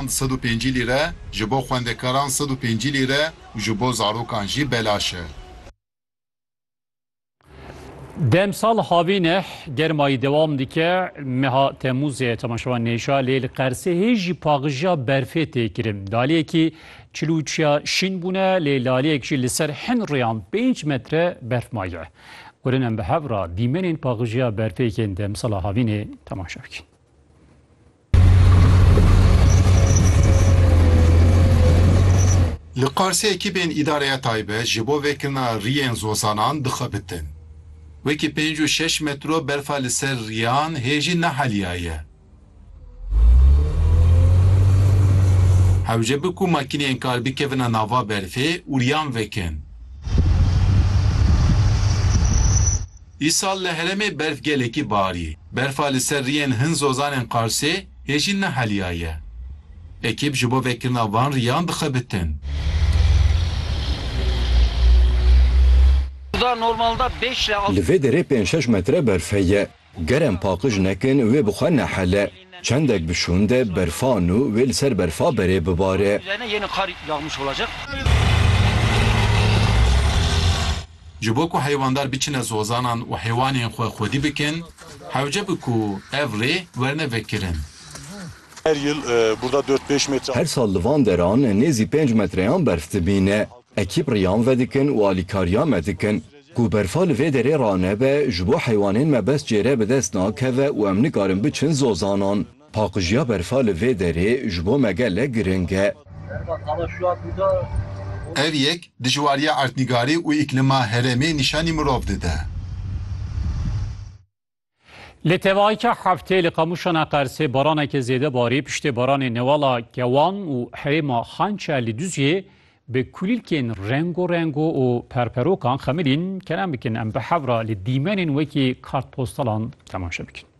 Xwend sed û pêncî lîre ji bo xwendekaran sed û pêncî lîre û ji bo zarokan jî belaş e. Demsal havîn e, germayî dewam dike, meha Temûzê temaşevan nêşa lê li Qersehê jî paqijiya berfê tê kirin. Laliyekî çil û çiya şîn bûne lê laliyek jî li ser hin rêyan pênc metre berf maye. Urin em bi hev re dîmenên paqijiya berfê yên demsala havînê temaşe bikin. Li Qarsê ekîbên Îdareya Taybet ji bo vekirina riyên zozanan dixebitin. Wekî pênc û şeş metro berfa li ser riyan hê jî neheliyaye. Hewce bi ku makîneyên kar bikevina nava berfê û riyan vekin. Îsal li herêmê berf gelekî barî. Berfa li ser riyên hin zozanên Qarsê hê jî neheliyaye. Ekîb ji bo vekirina van riyan dixebitin. Li vê derê pênc şeş metre berf heye. Ger em paqij nekin wê bi xwe nehele. Çendek bi şûn de berfa nû wê li ser berfa berê bibare. Ji bo ku heyvandar biçine zozanan û heywanên xwe xwedî bikin, hewce bi ku ev rê werne vekirin. Her yil burda dört pêş metre. Her sal li van deran nêzî pênc metreyan berf dibîne. Ekîp riyan vedikin û alîkariya me dikin. Ku berfa li vê derê ranebe, ji bo heywanên me bes cêre bi dest nakeve û em nikarin biçin zozanan. Paqijiya berfa li vê derê ji bo me gelek giring e. Ev yek dijwariya erdnîgarî û îklîma herêmê nîşanî mirov dide. Li tevaîka heftê li Qamûşana Qersê baraneke zêde barî, piştê baranê newala Kewan û herêma Xançe li Duziyê bi kulîlkên rengo rengo û perperokan xemilîn, kerem bikin em bi hevra li dîmenên wekî kartpostalan temaşe bikin.